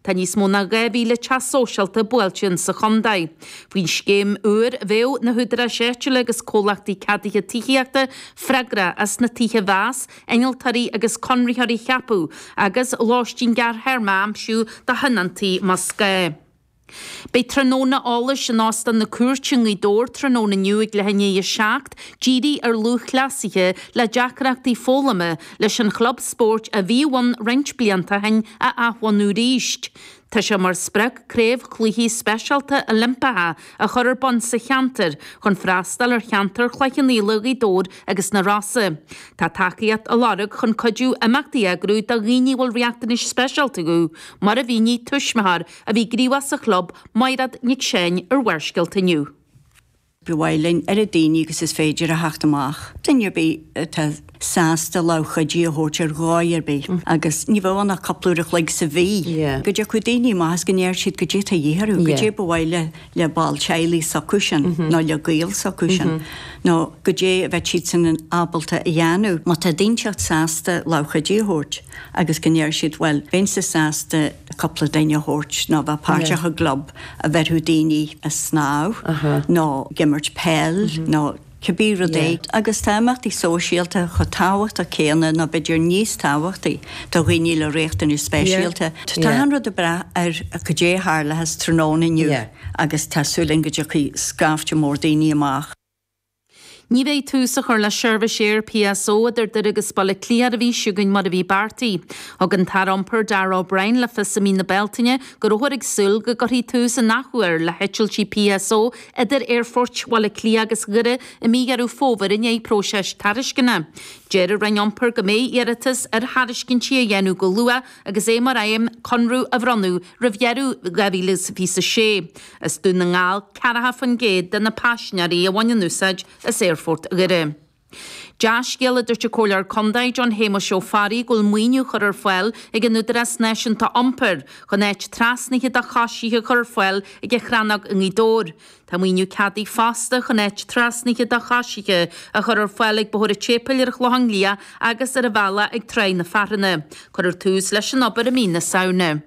Tá níos mó ná 2,000 teach sóisialta buailte in sa chontae. Faoin scéim úr, bheadh na húdaráis áitiúla agus comhlachtaí ceadaithe tithíochta freagrach as na tithe a mheas, innealtóirí agus conraitheoirí a cheapadh, agus lóistín gearrthéarma a aimsiú do thionóntaí más gá. Beidh tráthnóna eolais in Óstán na Cúirte i nGaoth Dobhair tráthnóna inniu ag leath i ndiaidh a seacht, dírithe ar lúthchleasaithe le deacrachtaí foghlama, leis an chlub spóirt a bhí ann roinnt blianta ó shin a athbhunú arís. Tá sé mar sprioc Craobh Chluichí Speisialta Oilimpeacha a chur ar bun sa cheantar chun freastal ar cheantar Chloich Cheann Fhaola, Ghaoth Dobhair agus na Rosa. Tá tacaíocht á lorg chun cuidiú imeachtaí a eagrú do dhaoine a bhfuil riachtanais speisialta acu, mar a mhínigh tuismitheoir a bhí gníomhach sa chlub, Máiréad Nic Seáin, ar Bharrscéalta inniu. Ba mhaith linn oiread daoine agus is féidir a theacht amach, duine ar bith atá sásta lámh chuidithe a thabhairt ar dhóigh ar bith, agus ní bheadh ann ach cúpla uair an chloig sa mhí, go dtiocfadh daoine amach agus go ndéarfadh siad goidé atá a dhíth orthu, goidé ba mhaith le ball teaghlaigh s'acu sin nó le gaol s'acu sin, nó goidé a bheadh siadsan ábalta a dhéanamh. Má tá duine inteacht sásta lámh chuidithe a thabhairt agus go ndéarfadh siad bhuel, bheinnse sásta cúpla duine a thabhairt nó a bheith páirteach i gclub, a bheirfeadh daoine a snámh nó ag imirt peil nó cibé rud é. Agus tá imeachtaí sóisialta chomh tábhachtach céanna nó b'fhéidir níos tábhachtaí do dhaoine le riachtanais speisialta. Tá an rud ag brath ar goidé a tharlós tráthnóna inniu agus tá súil againn go dtiocfaidh scaifte mór daoine amach. Ní bheidh tús á chur le seirbhís aeir PSO idir Doire agus Baile Átha Cliath ar an mhí seo chugainn mar a bhí beartaithe. Thug an tAire Iompair Darragh O'Brien le fios i mí na Bealtaine go rabhthar ag súil go gcuirfí tús an athuair le heitiltí PSO idir aerfoirt Bhaile Átha Cliath agus Dhoire i mí Dheireadh Fómhair i ndiaidh próisis tairisceana. De réir na Roinne Iompair beidh iarratas ar thairiscintí á dhéanamh go luath agus é mar aidhm conradh a bhronnadh roimh dheireadh 2026. As Dún na nGall ceathracha faoin gcéad de na paisinéirí a bhaineann úsáid as Aerfort Dhoire. Dea-scéal a dúirt an Comhairleoir Condae John Shéamuis Ó Fearraigh go bhfuil maoiniú curtha ar fáil ag an Údarás Náisiúnta Iompair chun áit trasnaithe do choisithe a chur ar fáil ag an Chrannóg i nGaoth Dobhair. Tá maoiniú ceadaithe fosta chun áit trasnaithe do choisithe a chur ar fáil ag Bóthar an tSéipéil ar an Chlochán Liath agus ar an bhealach go Tráigh na Foraire. Cuirfear tús leis an obair i mí na Samhna.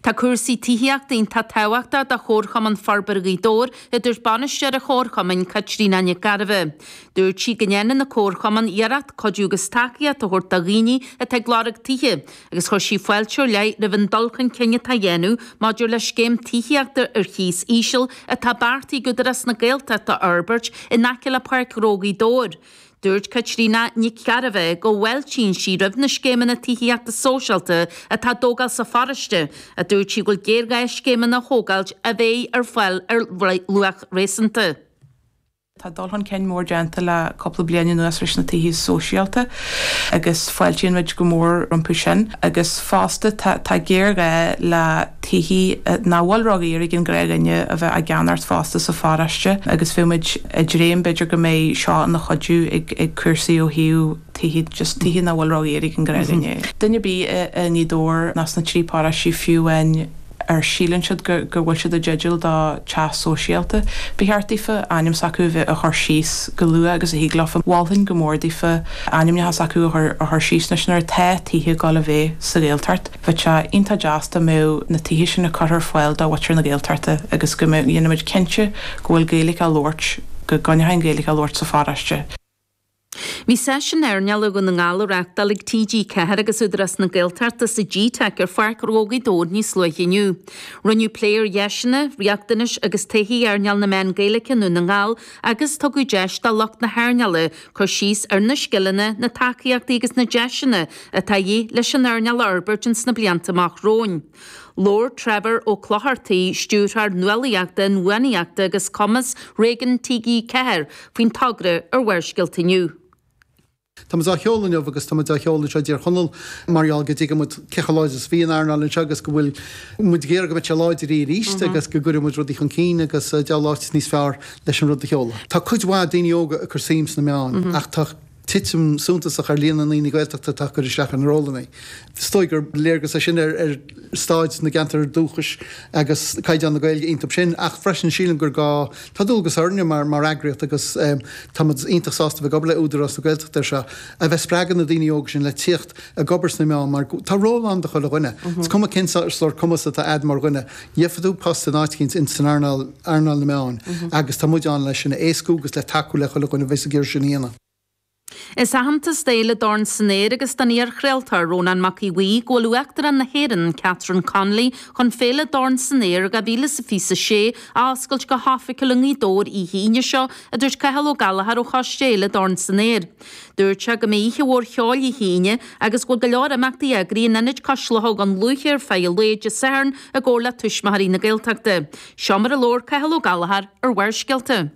Tá cúrsaí tithíochta iontach tábhachtach do Chomharchumann Forbartha Ghaoth Dobhair, a dúirt bainisteoir an Chomharchumainn, Caitríona Nic Gairbheith. Dúirt sí go ndéanann an Comharchumann iarracht cuidiú agus tacaíocht a thabhairt do dhaoine atá ag lorg tithe, agus chuir sí fáilte ar leith roimh an dul chun cinn atá á dhéanamh maidir le scéim tithíochta ar chíos íseal atá beartaithe ag Údarás na Gaeltachta a fhorbairt in aice le Páirc Ghnó Ghaoth Dobhair. Dúirt Caitríona Nic Gairbheith go bhfáiltíonn sí roimh na scéimeanna tithíochta sóisialta atá á dtógáil sa pharóiste, ach dúirt sí go bhfuil géarghá scéimeanna a thógáilt a bheidh ar fáil ar luach réasúnta. Tá dul chun cinn mór déanta le cúpla bliain anuas leis na tithe sóisialta agus fáiltíonn muid go mór rompu sin agus fosta tá géarghá le. tithe nach bhfuil ródhaor ag an ghnáthdhuine a bheith á gceannacht fosta sa pharóiste agus bheadh muid ag dréim b'fhéidir go mbeidh seo ina chuidiú ag cúrsaí ó thaobh tithe, just tithe nach bhfuil ródhaor ag an ghnáthdhuine. Duine ar bith i nGaoth Dobhair ná sna trí paróistí fiú amháin a síleann siad go bhfuil siad i dteideal do teach sóisialta, ba cheart daofa ainm s'acu a chur síos go luath agus thig leofa, mholfainn go mór daofa ainmneacha s'acu a chur síos anois nuair atá tithe ag dul a bheith sa Ghaeltacht. Bheadh sé iontach deas dá mbeadh na tithe sin á gcur ar fáil do mhuintir na Gaeltachta agus go ndéanfaimid cinnte go bhfuil Gaeilge á labhairt, go gcoinneofaí an Ghaeilge á labhairt sa pharóiste. Bhí seisiún earnáil i nDún na nGall á reáchtáil ag TG4 agus Údarás na Gaeltachta sa G-Teic ar Pháirc Ghnó Ghaoth Dobhair níos luaithe inniu. Rinneadh plé ar dheiseanna, riachtanais agus todhchaí earnáil na meán Gaeilge i nDún na nGall agus tugadh deis do lucht na hearnála Cur síos ar na scileanna, na tacaíochtaí agus na deiseanna atá de dhíth leis an earnáil a fhorbairt ins na blianta amach romhainn. Labhair Trevor Ó Clochartaigh, Stiúrthóir Nuálaíochta, Inbhuanaitheachta agus Cumas Réigiún TG4 faoin togra ar Bharrscéalta inniu. Tá muid á sheoladh inniu agus tá muid á sheoladh anseo i dTír Chonaill mar gheall go dtuigeann muid cé chomh láidir is a bhí an earnáil anseo agus go bhfuil muid ag iarraidh go mbeidh sé láidir arís agus go gcuirfidh muid rudaí chun cinn agus cá bhfuil áit níos fearr leis an rud a sheoladh. Tá cuid mhaith daoine óga ag cur suim sna meáin ach tá titim suntasach ar líon na ndaoine Gaeltachta atá ag cur isteach ar na rólanna. Is dóigh gur léargas é sin ar stáid na gceantar dúchais agus caighdeán na Gaeilge iontub sin ach freisin sílim gur gá, tá dualgas orainne mar eagraíocht agus táimid iontach sásta a bheith ag obair le Údarás na Gaeltachta ar seo, a bheith ag spreagadh na daoine óga sin le tíocht ag obair sna meáin mar tá ról ann do chuile dhuine, is cuma cén sórt cumas atá a'd mar dhuine. Gheobhaidh tú post in áit éicint in san earnáil, earnáil na meán, agus tá muid ann le sin a éascú agus le tacú le chuile dhuine a bheas ag iarraidh sin a dhéanamh. Is aitheantas é d'Fhéile Dorn san Aer agus don iarchraoltóir, Rónán Mac Aodh Bhuí, go bhfuil Uachtarán na hÉireann, Catherine Connolly, chun féile Dorn san Aer 2026 a oscailt go hoifigiúil i nGaoth Dobhair oíche Aoine seo, a dúirt Cathal Ó Gallchóir ó Choiste Fhéile Dorn san Aer. Dúirt sé go mbeidh oíche mhór cheoil Oíche Aoine agus go bhfuil go leor imeachtaí eagraithe in Ionad Cois Locha Dhún Lúiche ar feadh an lae Dé Sathairn i gcomhar le Tuismitheoirí na Gaeltachta. Seo mar a labhair Cathal Ó Gallchóir ar Bharrscéalta.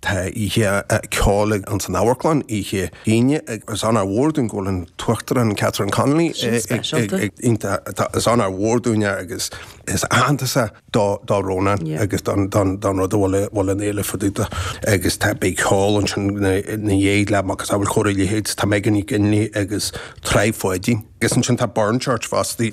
Tá oíche ceoil againn san amharclann oíche Aoine. Is onóir mhór dúinn go bhfuil an tUachtarán Catherine Connolly ag teacht. Is onóir mhór dúinn agus is aitheantas é. do Rónán agus don rud a bhfuil an fhéile fá dtaobh de agus tá beidh ceol ansin ina dhiaidh le agus a bhfuil chóir a leithéid tá Megan Nic Fhionnghaile agus Traí Pháidín agus ansin tá Burn Church fosta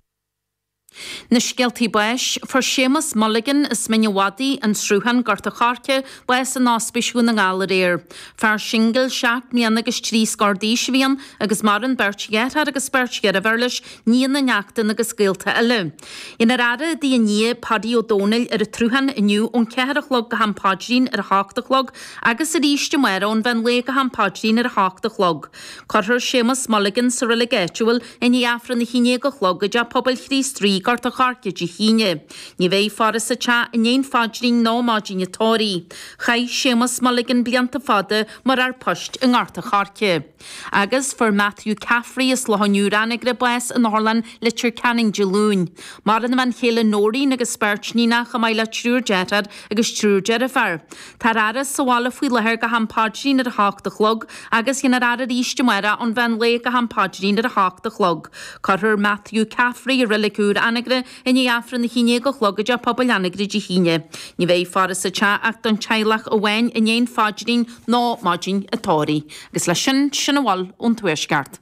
Na scéaltaí báis, Fuair Séamus Mulligan as Mín a' Mhadaidh, An Sruthán, Gort a' Choirce, bás in Ospís Dhún na nGall aréir. Fear singil seacht mbliana agus trí scór d'aois a bhí ann agus maireann beirt dheartháir agus beirt dheirféar leis, nianna neachtanna agus gaolta eile. Beidh an fhaire i dtigh Paddy Uí Dhomhnaill ar an tSruthán inniu ón cheathair a chlog go ham paidrín ar a hocht a chlog agus arís amárach ón mheán lae go ham paidrín ar a hocht a chlog. Cuirfear Séamus Mulligan sa reilig áitiúil i ndiaidh Aifreann a haon déag a chlog i dTeach Pobail Chríost Rí, Gort an Choirce Dé hAoine. Ní bheidh faire sa teach i ndéidh an phaidrín ná maidin an tórraimh. Chaith Séamus Mulligan blianta fada mar fhear poist i nGort an Choirce. Agus fuair Matthew Caffrey as Loch an Iúir Anagaire bás in otharlann Leitir Ceanainn Dé Luain. Maireann a bhean chéile Noreen agus beirt níon chomh maith le triúr deartháir agus triúr deirféar. Tá an fhaire sa bhaile faoi láthair go ham paidrín ar a hocht a chlog agus beidh an fhaire arís amárach ón mheán lae go ham paidrín ar a hocht a chlog. Cuirfear Matthew Caffrey i reilig úr Anagaire I ndiaidh Aifreann a hAon Déag a Chlog i dTeach Pobail Anagaire Dé hAoine, ní bheidh faire sa teach ach don teaghlach amháin i ndéidh an phaidrín ná maidin an tórraimh. Agus leis sin, sin a bhfuil ón Tuaisceart.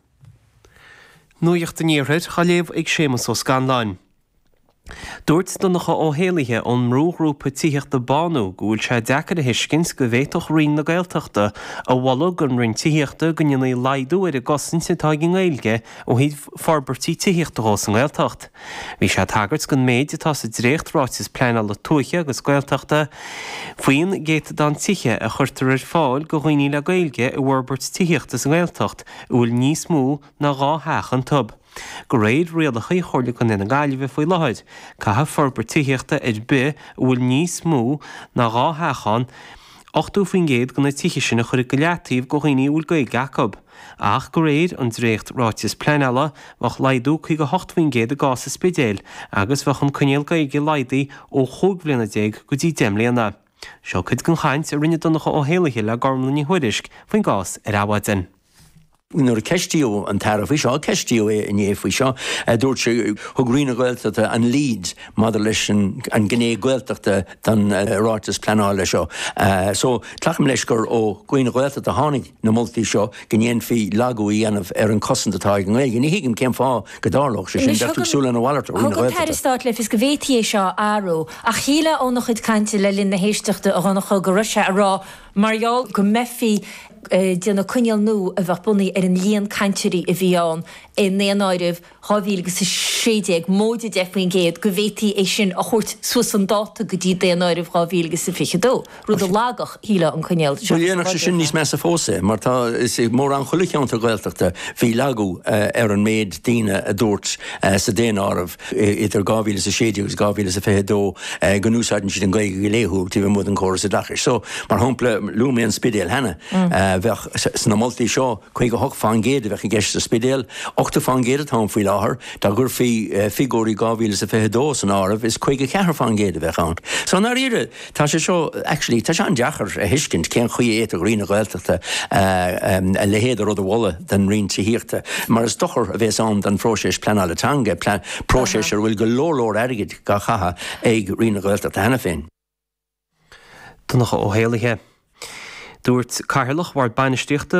Nuacht an Iarthair á léamh ag Séamus Ó Scanláin. Dúirt Donncha Ó hÉallaithe ón mbrúghrúpa tithíochta Bánú go bhfuil sé deacair a thuiscint go bhféadfadh Roinn na Gaeltachta a mholadh don Roinn Tithíochta go ndéanfaí laghdú ar an gcosaint atá ag an nGaeilge ó thaobh forbairtí tithíochta dhe sa nGaeltacht. Bhí sé ag tagairt don méid atá sa dréacht-Ráiteas Pleanála Tuaithe agus Gaeltachta faoin gcéatadán tithe a chuirfear ar fáil do dhaoine le Gaeilge i bhforbairt tithíochta sa nGaeltacht a bhfuil níos mó ná dhá theach iontu. De réir rialacha Chomhairle Contae na Gaillimhe faoi láthair, caithfidh forbairt tithíochta ar bith a bhfuil níos mó ná dhá theach ann 80% de na tithe sin a chur i leataobh do dhaoine a bhfuil Gaeilge acu. ach de réir an dréacht-Ráiteas Pleanála, bheadh laghdú chuig 8% i gcás an Spidéil agus bheadh an coinníoll Gaeilge laghdaithe ó chúig bhliana déag go dtí deich mbliana. Seo cuid den chaint a rinne Donncha Ó hÉallaithe le Gormlaith Ní Thuairisg faoin gcás ar Adhmhaidin. Nuair a ceistíodh an tAire faoi seo, ceistíodh é inné faoi seo, dúirt sé, thug Roinn na Gaeltachta an lead maidir leis an gné Gaeltachta den Ráiteas Pleanála seo. So, glacaim leis gur ó Roinn na Gaeltachta a tháinig. na moltaí seo go ndéanfaí laghdú a dhéanamh ar an chosaint atá ag an nGaeilge. Ní thuigim cén fáth go dtarlódh sé sin. Bheadh tú ag súil lena mhalairt ó Roinn na Gaeltachta. Thug an tAire Stáit le fios go bhféadfaí é seo a athrú ach shílfeá óna chuid cainte le linn na héisteachta a Dhonncha go raibh sé ag rá mar gheall go mbeifí ag déanamh coinníoll nua a bheadh bunaithe ar an líon cainteoirí a bhí ann i ndaonáireamh 2016, móide 10 faoin gcéad, go bhféadfaí é sin a thabhairt suas chun dáta go dtí Daonáireamh 2022, rud a lagódh, shílfeá, an coinníoll, seachas a láidreodh. Bhuel, dhéanfadh sé sin níos measa fós é, mar tá, is i mórán chuile cheantar Gaeltachta, bhí lagú ar an méid daoine a dúirt sa Daonáireamh idir 2016 agus 2022 go n-úsáideann siad an Ghaeilge go laethúil taobh amuigh den chóras oideachais. So, mar shampla, luaigh mé an Spidéal cheana, bheadh sna moltaí seo, 58 faoin gcéad a bheadh i gceist sa Spidéal, 80 faoin gcéad atá ann faoi láthair, dá gcuirfí figiúirí 2022 san áireamh is 54 faoin gcéad a bheadh ann. So i ndáiríre tá sé seo, actually, tá sé an-deacair a thuiscint cén chaoi a bhféadfadh Roinn na Gaeltachta a leithéid de rud a mholadh don Roinn Tithíochta, mar is dochar a bhéas ann don phróiseas pleanála teanga, próiseas ar a bhfuil go leor leor airgid á chaitheamh ag Roinn na Gaeltachta cheana féin. Donncha Ó hÉallaithe. Dúirt Cathaoirleach Bhord Bainistíochta